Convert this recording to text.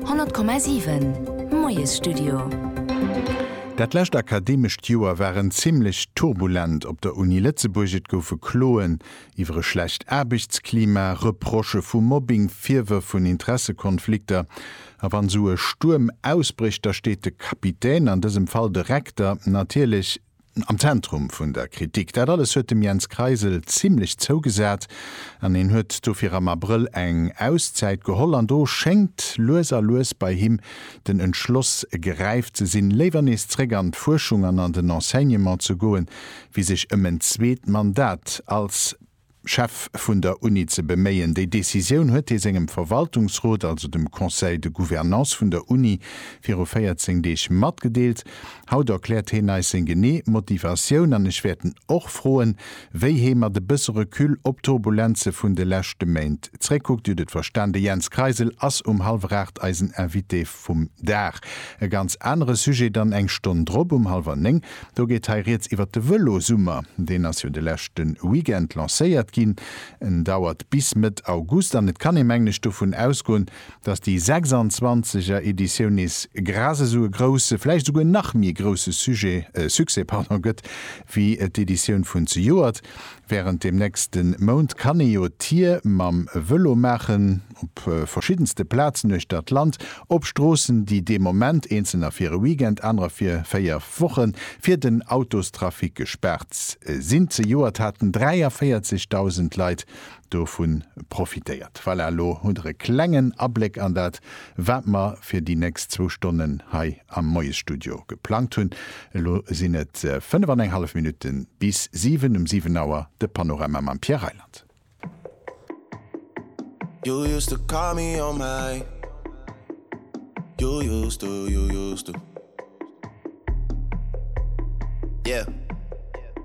100,7 Moiesstudio. Dat lescht akademescht Joer war en zimmlech turbulent op der Uni Lëtzebuerg. Et goufe Kloen iwwer e schlecht Aarbechtsklima, Reprochë vu Mobbing, Virwërf vun Interessekonflikter. A wann esou e Stuerm ausbrécht, da steet de Kapitän, an dësem Fall de Rektor, natierlech am Zentrum vun der Kritik. Dat alles huet dem Jens Kreisel zimlech zougesat an hien huet dofir am Abrëll eng Auszäit geholl an do schéngt lues a lues bei him den Entschloss geräift ze sinn, léiwer nees zréck an d'Fuerschung an an den Enseignement ze goen, wéi sech ëm en zweet Mandat als. Chef vun der Uni ze beméien. Déi Decisioun huet hie sengem Verwaltungsrot, also dem Conseil de Gouvernance vun der Uni, viru 14 Deeg matgedeelt. Haut erkläert heen eis seng genee Motivatioun an ech wäert en och froen, wéi hee mat e bësse Recul op d'Turbulenze vun de leschte Méint zréckkuckt. Jut et verstan. De Jens Kreisel ass um hallwer 8 eisen Invité. Vum Dag. E ganz anere Sujet dann eng Stonn drop um hallwer néng. Do geet hei rieds iwwert de Vëlosummer. Deen ass jo de leschte Weekend lancéiert ginn. En dauert bis Mëtt August an et kann ee mengen ech dovun ausgoen, datt déi 26 er Editioun nees gras esou e grousse, vläicht esouguer nach méi grousse Sujet, Succès, pardon, gëtt wéi d'Editioun vun zejoert. Wärend dem nächste Mount kann ee jo d'Tier mam Vëlo maachen, op verschiddenste Plazen uechter d'Land, op Stroossen, déi dee Moment, eenzelner fir e Weekend, anerer fir véier Wochen, fir den Autostrafic gespaart sinn. Zejoert haten 43.000 Leit dovun profitéiert. Voilà, elo hutt der e klengen Abléck an dat Wat mer fir déi nächst zwou Stonnen hei am Moiesstudio geplangt hunn, elo sinn et fënnef an eng hallef Minutte bis siwen, um siwen Auer de Panorama mam Pierre Reyland.